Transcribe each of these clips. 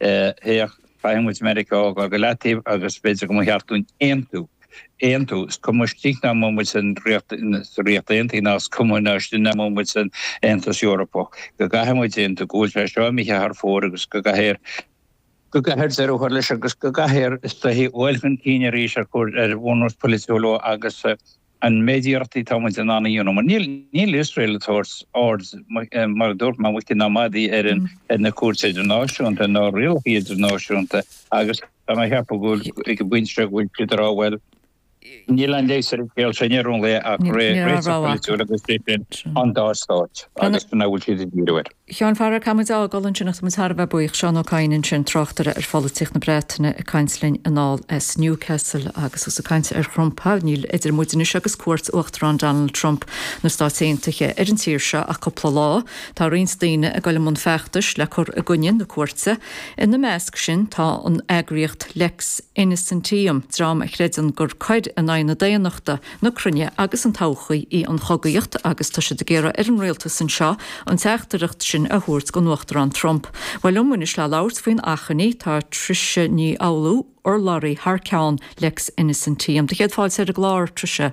Féach, faighidh muid Meiriceá á gcur go leataobh agus b'fhéidir go mba cheart dúinn aontú, aontú, is cuma istigh ná amuigh muid den Ríocht, sa Ríocht Aontaithe ná is cuma istigh ná amuigh muid den Aontas Eorpach, go gcaithfidh muid aontú go bhfuil sé seo imithe thar fóir agus go gcaithfear, go gcaithfear deireadh a chur leis agus go gcaithfear, is dóichí, a ghabháil chun cinn arís ar bhunús polaitiúil agus. an méid iarrachtaí atá muid in ann a dhéanamh, mar níl Iosrael ag tabhairt aird, mar a dúirt mé, muice ná madaidh ar na cúirteanna idirnáisiúnta nó ar rialacha idirnáisiúnta, agus tá mé ag ceapadh go bhfuil, ag an bpointe seo go bhfuil siad ag rá, bhuel, níl aon leigheas ar an scéal seo, níl ann ach réiteach polaitiúil agus sin an dá stáit, agus sin é a bhfuil siad ag díriú air. Sheáin, faraor, caithfidh muid é a fhágáil ansin ach tá muid thar a bheith buíoch. Seán Ó Cadhain ansin, tráchtaire ar pholaitíocht na Breataine ag caint linn anall as Newcastle agus is ag caint ar Thrump. Ha, níl idir muid anois agus cuairt Uachtarán Donald Trump na Stát Aontaithe ar an tír seo ach cúpla lá. Tá roinnt daoine ag dul i mbun feachtais le cur i gcoinne na cuairte. Ina measc sin tá an eagraíocht Lex Innocentium, dream a chreideann gur coir in aghaidh na daonnachta, na cruinne agus an todhchaí í an chogaíocht agus tá siad ag iarraidh ar an rialtas anseo an teachtaireacht sin a thabhairt don Uachtarán Trump. Bhuel, liom anois le labhairt faoin achainí, tá Trisha Ní Fhoghlú, urlabhraí thar ceann Lex Innocentium. Do chéad fáilte ar an gclár, Trisha.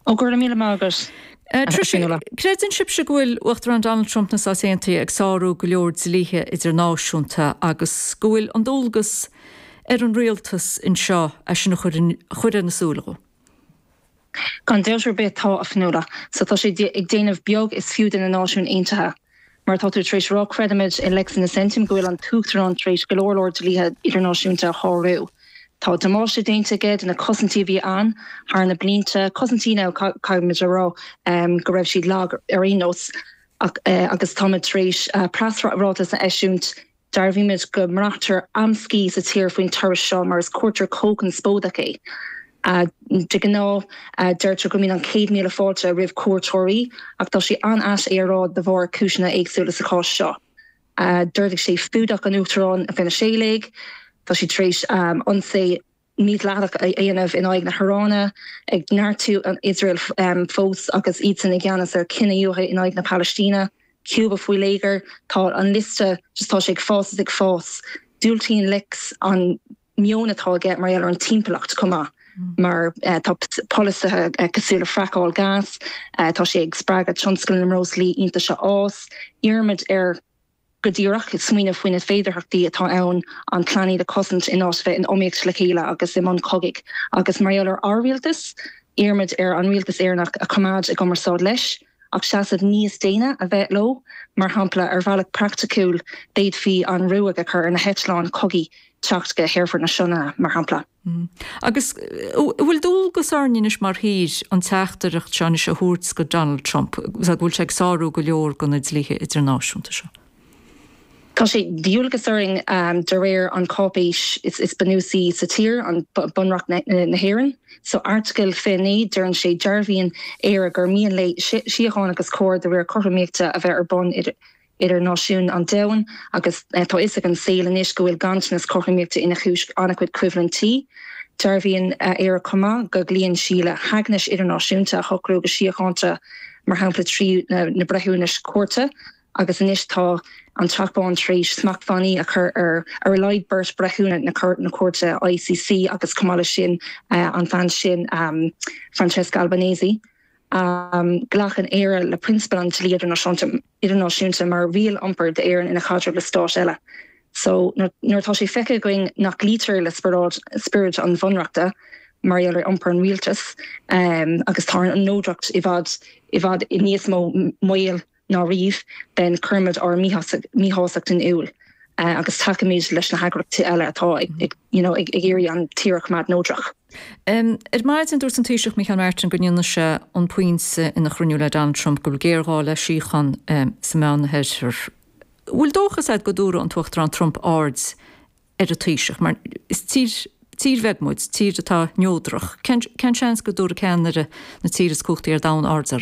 Ó, go raibh míle maith agat, a Fhionnuala. Trisha, creideann sibhse go bhfuil Uachtarán Donald Trump na Stát Aontaithe ag sárú go leor dlíthe idirnáisiúnta agus go bhfuil an dualgas, ar an rialtas anseo é sin a chur ar na súile dhó. Gan dabht ar bith tá, a Fhionnuala. So tá sé ag déanamh beag is fiú de na Náisiúin Aontaithe. Mar atá tú tar éis rá creidimid i Lex Innocentium go bhfuil an tUachtarán tar éis go leor leor dlíthe idirnáisiúnta a shárú. Tá damáiste déanta aige de na cosaintí a bhí ann thar na blianta, cosaintí now caithfimid a rá go raibh siad lag ar aon nós, ach agus táimid tar éis preasráiteas a eisiúint, Dearbhaímid go mbraitear amscaí sa tír faoin turas seo mar is cuairteoir chomh conspóideach é. De ghnáth, deirtear go mbíonn an céad míle fáilte roimh chuairteoirí ach tá sé an-ait é a rá de bharr cúiseanna éagsúla, sa chás seo, d'ordaigh sé fuadach an Uachtaráin Veniséalaigh, tá sé tar éis ionsaí. mídhleathach a dhéanamh in aghaidh na hIaráine, ag neartú an Iosrael fós agus iadsan i gceannas ar chinedhíothú in aghaidh na Palaistíne, Cuba faoi léigear, tá an liosta, just tá sé ag fás is ag fás. Diúltaíonn Lex an meon atá aige mar gheall ar an timpeallacht chomh maith mar tá polasaithe cosúil le fraiceáil gas, tá sé ag spreagadh tionscal na mbreoslaí iontaise a fhás, iarraimid ar. go díreach, smaoineamh faoi na féidearthachtaí atá ann an plainéad a chosaint in áit a bheith in iomaíocht le chéile agus i mbun cogaidh. Agus mar gheall ar ár rialtas, iarraimid ar an rialtas Éireannach a choimeád i gcumarsáid leis, ach seasamh níos déine a bheith leo. Mar shampla, ar bhealach praiticiúil, d'fhéadfaí an ruaig a chur ar na heitleáin chogaidh teacht go hAerfort na Sionainne, mar shampla. Hm. Agus an bhfuil dualgas orainn anois mar thír an teachtaireacht seo anois a thabhairt go Donald Trump, go bhfuil sé ag sárú go leor de na dlíthe idirnáisiúnta seo? Tá sé de dhualgas orainn de réir an cháipéis is bunúsaí sa tír, Bunreacht na hÉireann. San airteagal 29, deireann sé, Dearbhaíonn Éire gur mian léi síocháin agus cóir de réir cothromaíochta a bheith ar bun idir. idir náisiúin an domhain agus tá fhios ag an saol anois go bhfuil ganntanas cothromaíochta ina chúis an-chuid coimhlintí. Dearbhaíonn Éire chomh maith go gcloíonn sí le haighnis idirnáisiúnta a shocrú go síochánta, mar shampla trí na breithiúnais chúirte, agus anois tá an Teach Bán tar éis smachtbhannaí a chur ar ar a laghad beirt bhreithiúna na cúirte ICC agus chomh maith leis sin an bhean sin Francesca Albanese. Glacann Éire le prionsabail an dlí idirnáisiúnta. idirnáisiúnta mar riail iompair d'Éirinn ina chaidreamh le stáit eile so nuair atá sé feicthe againn nach gcloítear le spiorad an Bhunreachta mar gheall ar iompar an Rialtais agus tá an neodracht i bhfad i bhfad i níos mó i mbaol ná riamh then cuirimid ár míshásacht in iúl agus tacaímid leis na heagraíochtaí eile atá ag you know ag iarraidh an tír a choimeád neodrach. Ar maidin, dúirt an Taoiseach Micheál Martin go ndéanfaidh sé an pointe ina chruinniú le Donald Trump go bhfuil géarghá le síocháin sa Meánoirthear. Bhfuil dóchas agat go dtabharfaidh an tUachtarán Trump aird ar an Taoiseach? Mar is tír tír bheag muid, tír atá neodrach. Cén seans go dtabharfaidh ceannaire na tíre is cumhachtaí ar domhan aird orainn?